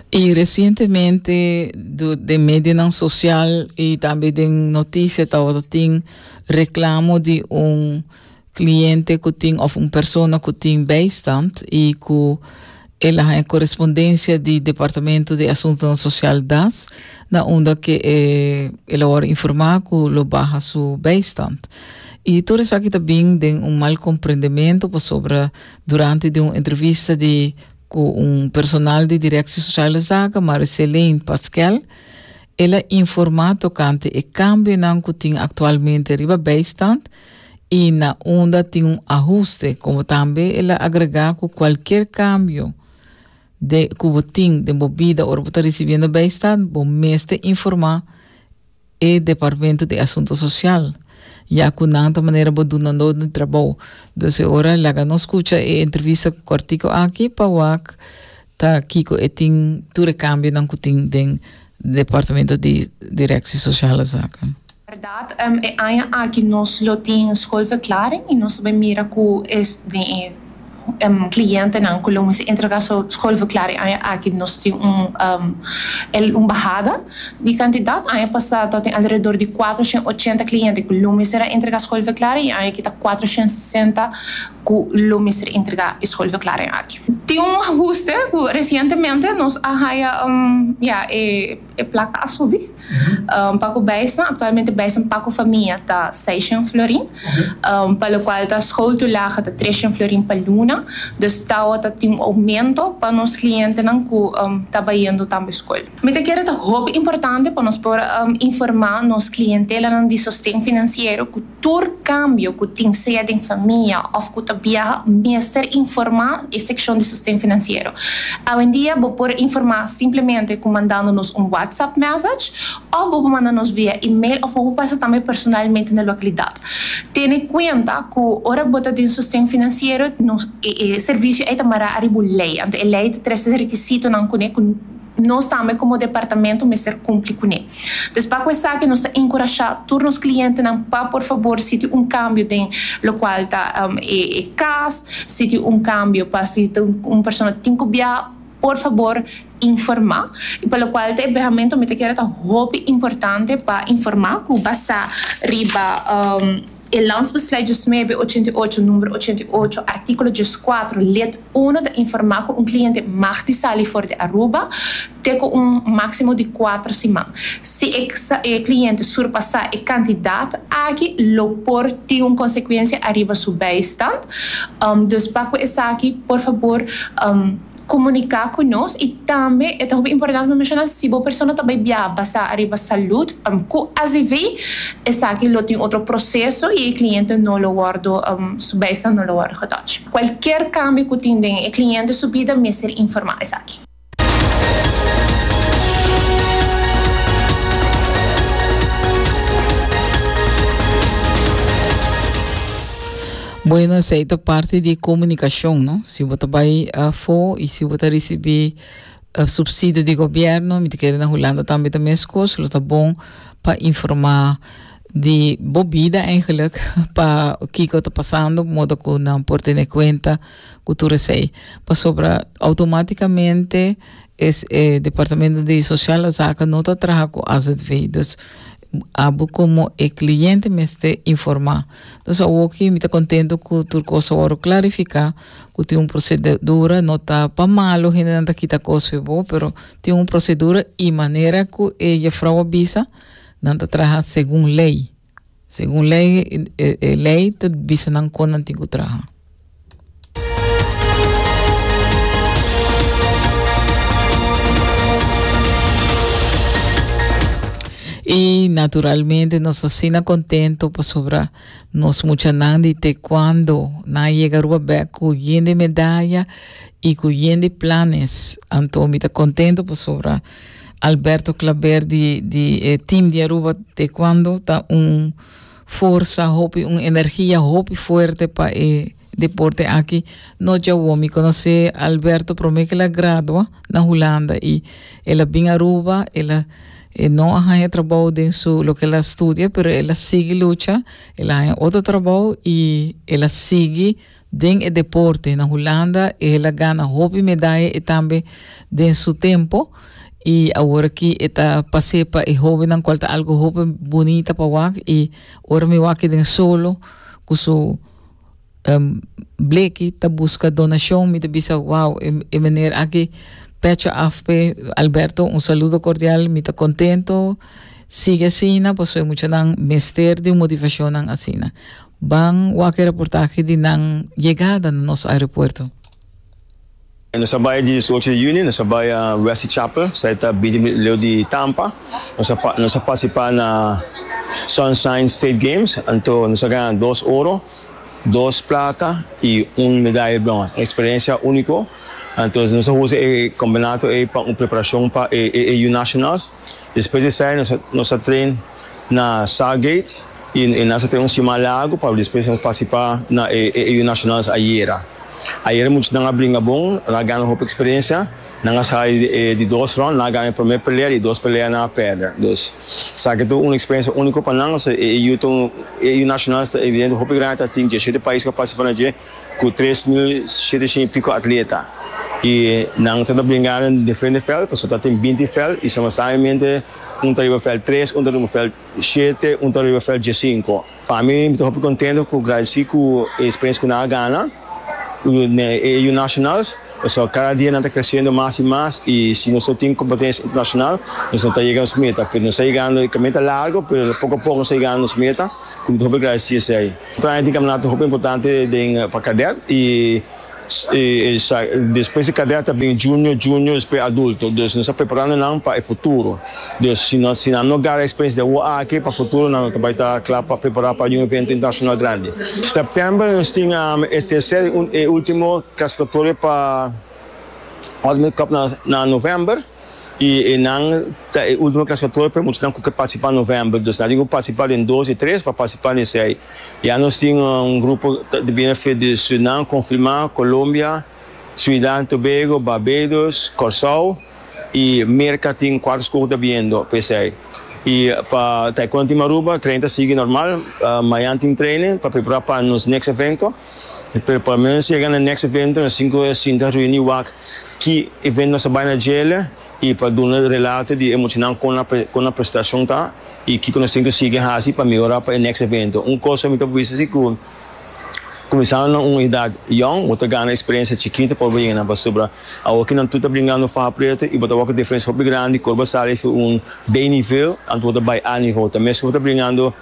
Y recientemente do den medianan social y tambe den noticia tawata tin reclamo di un cliente cu tin of un persona cu tin bijstand y cu el a haña correspondencia di Departamento di Asuntonan Social, das, na unda cu e el a wor informa cu lo baha su bijstand. Y tur esaki ta bin den un mal comprendemento pasobra Durante di un entrevista di cu un personal di Directie Sociale Zaken, Marie-Céline Pasquel, el a informa tocante e cambionan cu tin actualmente riba bijstand y na unda tin un ahuste, como tambe el a agrega cu cualkier cambio den cu bo tin den bo bida ora bo ta ricibiendo bijstand, bo mester informa E departamento di asunto social, ya cu nan ta manera bo dunando di trabou. Dus e ora laga nos scucha e entrevista cu cortico aki pa wak ta kico e tin tur e cambionan cu tin den departamento di directie social azaken. Berdad e aña aki nos lo tin schoolverklaring y nos ta bay mira cu es den e clientenan cu lo mester entrega su scol verklaring e aña aki nos tin un bahada di cantidad. Aña pasa ta tin alrededor di cuatro shen ochenta cliente cu lo mester a entrega scol verklaring y aña aki ta cuatro shen sesenta cu lo mester entrega e scol verklaring aki. Tin un ahuste cu recientemente nos a haya ya e E plaka a subi pa ku Beisen. Aktualmente Beisen pa ku famia ta seishen florin, pa lokual ta School to Laga ta treshen florin pa luna. Dus tawo ta tin un oumento pa nos klientenan ku ta bayendo tambe skol. Mi ta kere ta hopi importante pa nos por informá nos klientelanan di sosten finansiero ku. Tur kambio ku tin, sea den famia òf ku ta biaha, mester informá e sekshon di Sosten Finansiero. Awendia bo por informá simplemente ku mandando nos un WhatsApp mèsech òf bo por manda nos via email òf bo por pasa tambe personalmente na lokalidat. Tene kuenta ku ora bo ta den Sosten Finansiero nos e servisio ei ta mará riba un lei, anto e lei ta trese rekisitonan kuné ku. Nos tambe komo departamento mester kumpli kuné. Pues pa ku esaki nos ta inkurashá tur nos klientenan pa por fabor si tin un kambio den lokual ta e kas, si tin un kambio pa si un persona tin ku biaha por fabor informá. I pa lokual ta e biahamento mi ta kere ta hopi importante pa informá ku basá riba. E Landsbeslui diesnuebe ochenta i ocho, numero ochenta i ocho, artíkulo dieskuater, lid uno ta informá ku un kliente mag di sali for di Aruba te ku un máksimo di kuater siman. Si e e kliente surpasá e kantidat aki lo por tin un konsekuensia ariba su beistand. Dus pa ku esaki por fabor. komuniká ku nos i tambe e ta hopi importante pa menshona si bo persona ta bai biaha basá ariba salud ku asv esaki lo tin otro proseso i e kliente no lo wòrdu su bijstand no lo wòrdu getòch. Kualkier kambio ku tin den e kliente su bida mester informá esaki. Bueno, esei ta parti di comunicacion, no? Si bo ta bai afo y si bo ta ricibi subsidio di gobierno, mi ta kere na Hulanda tambe ta mescos, lo ta bon pa informa di bo bida eigenlijk, pa kico ta pasando, modo cu nan por tene cuenta cu tur esei. Pasobra automaticamente es e Departamento di Sociale Zaken no ta traha cu AZV, dus Abo komo e kliente mester informá. Nos awoki mi ta kontentu ku tur kos a wòrdu klarifiká, ku tin un prosedura, no ta pa malu hendenan ta kita kos fu e bo, pero tin un prosedura i manera ku e jefrou a bisa, nan ta traha segun lei. Segun lei, e lei ta bisa nan kon nan tin ku traha. Y naturalmente nos está sina contento pasobra nos muchanan di taekwondo na llega Aruba back cu yende medalla y cu yende planes. Anto mi está contento pasobra Alberto Claver di, di eh, team di Aruba taekwondo está un forsa, hopi un energia hopi fuerte pa e deporte aki. No djawo, mi conoce Alberto prome que el a gradua na Hulanda y el a bin Aruba, el a e no a haya trabou den su loke el a studia pero el a sigui lucha, el a haya otro trabou y el a sigui Den e deporte na Hulanda el a gana hopi medaya e tambe den su tempo y aworaki e ta pas'e pa e hobennan cual ta algo hopi bunita pa wak y ora mi wak den solo cu su bleki ta busca donacion mi ta bisa wow e meneer aki pecha af p'e Alberto un saludo cordial mi ta contento sigui asina pasobra e muchanan mester di motivacionnan asina. Ban wak e reportahe di nan yegada na nos aeropuerto. Nos a bai diesocho di juni, nos a bai Wesley Chapel, sa e ta bini mit leu di Tampa. Nos a nos a participá na Sunshine State Games, anto nos a gana dos oro, dos plata i un medaye bròn. Un experiencia único, anto nos a usa e campeonato ei pa un preparacion pa e e e Yu Nationals. Despues di esai nos a train na Southgate y nos a train un siman largo pa despues nos participa na e AU Nationals ayera. Ayera muchanan a bringa bon, nan a gana hopi experiencia, nan a sali di dos round, nan a gana e primer pelea y e dos pelea nan a perder. Dus esaki ta un experiencia unico pa nan, so e AU ta un, e AU Nationals ta evidente hopi grandi ta tin diecisiete pais cu a participa na dje. ku tres mil shetenta i piko atleta i nan ta na bringa na diferente vèlt pasobra ta tin binti vèlt i suma sabiamente un ta riba vèlt tres, un ta riba vèlt shete, un ta riba vèlt diesinko. Pa mi mi ta hopi kontento ku gradesí ku e eksperensia ku nan a gana den e yu nashonals pasobra kada dia nan ta kresiendo mas i mas i si nos no tin kompetensia internashonal nos no ta yega nos meta pero nos ta yegando e kaminda ta largu pero poko a poko nos ta yegando nos meta. Cu tin hopi gracia esey. Train tin caminata hopi importante den pa cadet y despues di cadet ta bini junior, junior despues adulto. Dus nos ta preparando nan pa e futuro. Dus si nos si nan no gara experiencia de awo aki pa futuro nan no ta bay ta cla pa prepara pa un evento internacional grandi. September nos tin e tercer y ultimo clasificatoria pa Ultimate Cup na november. y enan ta e ultimo clasificator pa e muchanan cu ke participa november, dus nan tin cu participa den dos y tres pa participa den esey. Ya nos tin un grupo ta ta bini afe di Surinam confirma, Colombia, Trinidad and Tobago, Barbados, Corsou y Merca tin cuatro scoge ta biniendo pa esey. Y pa Taekwondo Team Aruba training ta sigui normal, mayan tin training pa prepara pa nos next evento. E performance yega na next evento na sinku e sinta reuni wak ki evento nos a bai na djele i pa duna relato di e muchanan kon a kon a prestacion ta i kiko nos tin ku sigui hasi pa mihora pa e next evento. Un kos ku mi ta bisa si ku kuminsando na un edat yòn bo ta gana eksperensia chikito pa bo yega nan pasobra awor ki nan tur ta bringando faha preto i bo ta wak un diferensia hopi grandi kor bo sali fu un B-nivel anto bo ta bai A-nivel ta mes ku bo ta bringando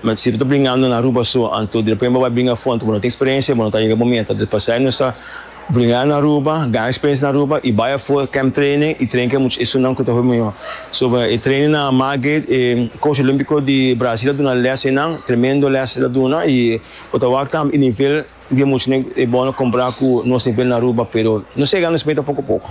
Ma si bo ta bringando na Aruba so, anto derepent bo a bai bringa afont, bo no tin experiencia, bo no ta yega bo meta. Dus pasai nos ta bringa na Aruba, gana experiencia na Aruba y bai afo camp training y train cu e much esunnan cu ta hopi mayor. So e training na Margate, e coach olympico di Brasil a duna les einan, tremendo les el a duna y bo ta wak tambe e nivel di e muchnan e bono compara cu nos nivel na Aruba, pero nos a yega nos meta poco poco.